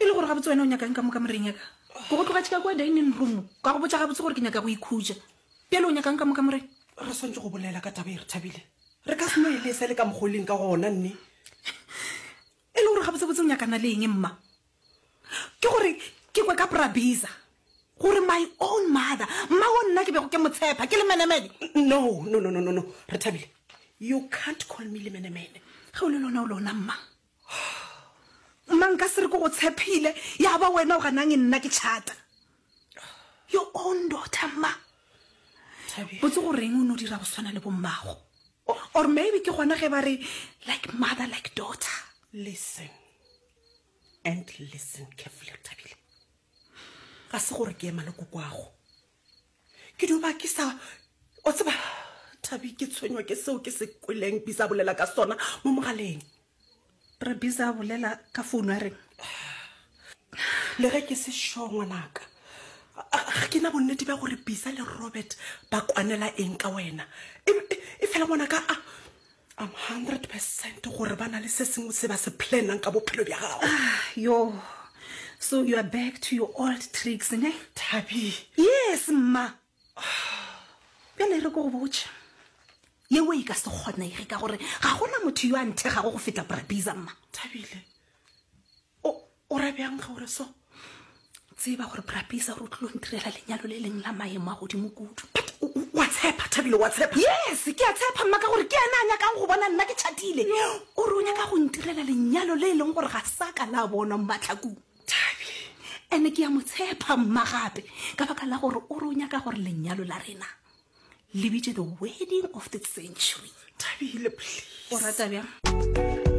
e le gore ga botse wena o nyakang ka moka moreng yaka go go tlogatšhika kwa dining room ka go botsa ga botse gore ke nyaka go ikhutsa pele o nyakang ka moka moreng re swantse go bolela ka taba e re thabile re ka seno e le sa le ka mogoleng ka gona nne e le gore ga botsebotse o nyakana le eng mma Ke gore ke kwe ka Prabiza gore my own mother mma o nna ke bego ke motshepa ke lemenemene no no no no no re thabile you can't call me lemenemene ge o le lona o lona mma mma nka se re ke go tshepile ya ba wena o ganang e nna ke chata your own daughter mma botse goreng o ne o dira go tshwana le bommago or maybe ke gona ge ba re like mother like daughter listen and listen carefully tabile ga se gore ke ema le kokwago ke duba ke sa o tseba thabi ke tshwenywa ke seo ke se kweleng bisa bolela ka sona mo mogaleng re bisa bolela ka founu a reng le ge ke se sure ngwanaka ga ke na bonnete bja gore bisa le robert ba kwanela eng ka wena e, e, e fela ngwanaka a I'm 100 percent gore ba na le se sengwe se ba se planang ka bophelo bja gago ah, yo so you are back to your old tricks ne thabi yes mma bjale e re ko go botša yeo e ka se kgonege ka gore ga gona motho yo a nthegago go feta brabisa mma thabile o ra bjang ge o re so tseba gore brapisa gore o tlilo ntirela lenyalo le leng la maemo a godimo kudu wa tshepa thabile wa tshepa yes ke a tshepa mma ka gore ke ena a nyakang go bona nna ke chatile o re o nyaka go ntirela lenyalo le e leng gore ga sa ka la bonwa mmatlhakong thabi ene ke ya mo tshepa mma gape ka baka la gore o re o nyaka gore lenyalo la rena le bitše the wedding of the century thabile please o rata bjang